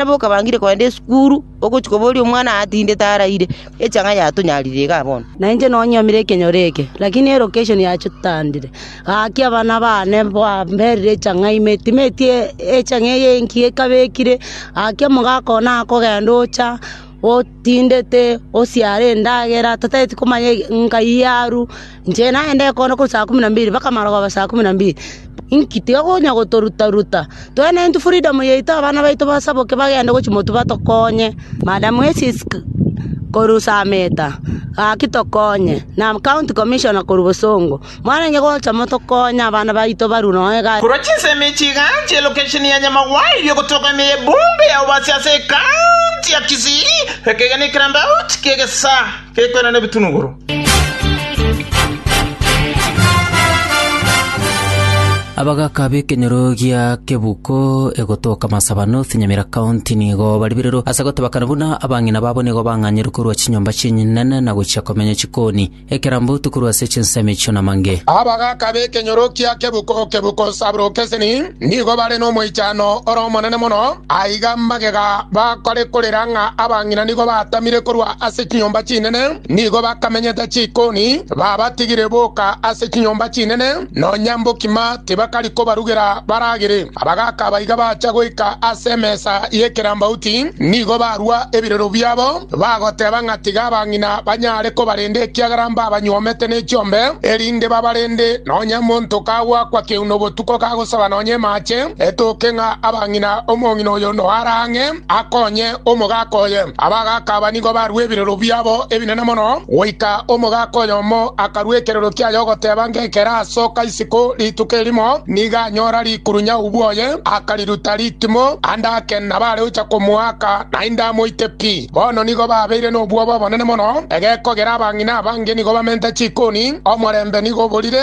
Nabo okabangire kogenda esukuru, ogochia koboria omwana atindete araire, echa ng'a yatonyarire igaa bono. Na inche nonyuomire ekenyoro eke, lakini elocation ya chotandire. Gaki abana baane bamberire echa ng'a ime, timeti echa ng'a eye enki ekabekire, gaki omogaka one akogenda ocha, otindete osiare endagera totagete komanya nkai aru, inche nagende kono korwa saa kumi na mbili mpaka marogoba saa kumi na mbili, inki tiga konya gotoruta ruta, twaye naye intwe freedom yaito abana baito basaboke bagende gochia motwe batokonye, madam esisc korwa usameta gaki tokonye, na county commissioner korwa bosongo. “Mwarenge gocha motokonye abana baito barue nonya egati.” Korwa chinsemo echi igacha elokesheni ya Nyamagwai riogotoka ime y'ebuumbe ya Obasi ase ekaunti ya Kisii, ekaiga ne ekerambauti ki'egesaa gekoirana ebitunuguru. Abagaaka b'ekenyoro gia Kebuko egotoka Masaba North, Nyamira County nigo baribererwe ase gotebakana buna abang'ina babo nigo bang'anyerwe korwa chinyomba chi'enyinene na gochia komenya chikoni. Ekerambe otukorwe ase chinsemo echio namange. Aba bagaka b'ekenyorokia kebuku o kebuku o Sabrukeseni nigo bare nomoichano ore omonene mono. Aiga magega bakore korera ng'a abang'ina nigo batamire korwa ase chinyomba chinene, nigo bakamenyete chikoni, babatigire boka ase chinyomba chinene, nonya mbokima tibakari kobarugera baragere. Abagaaka abaiga baacha goika ase emesa y'ekerambauti, nigo barua ebirero biabo, bagoteba ng'a tiga abang'ina banyare kobarenda ekiagera mbabanyuomete ne chiombe, erinde babarende nonya monto kagwakwa keuno botuko kagosaba nonya emaache, etoke ng'a abang'ina omong'ina oyo noara ang'e. akonye omogaka oye. Abagaka aba nigo barue ebirero biabo ebinene mono, goika omogaka oyomo akarua ekirero kiaye ogoteba ng'ekere asoka isiko rituko erimo, nigo anyora rikuru nyaubu oye, akariruta ritimo ande ake nabare gocha komoaka, naende amoite pi. Bono nigo babeire nobwoba obonene mono, egekogera abang'ina abange nigo bamente chikoni, omorembe nigo oborire.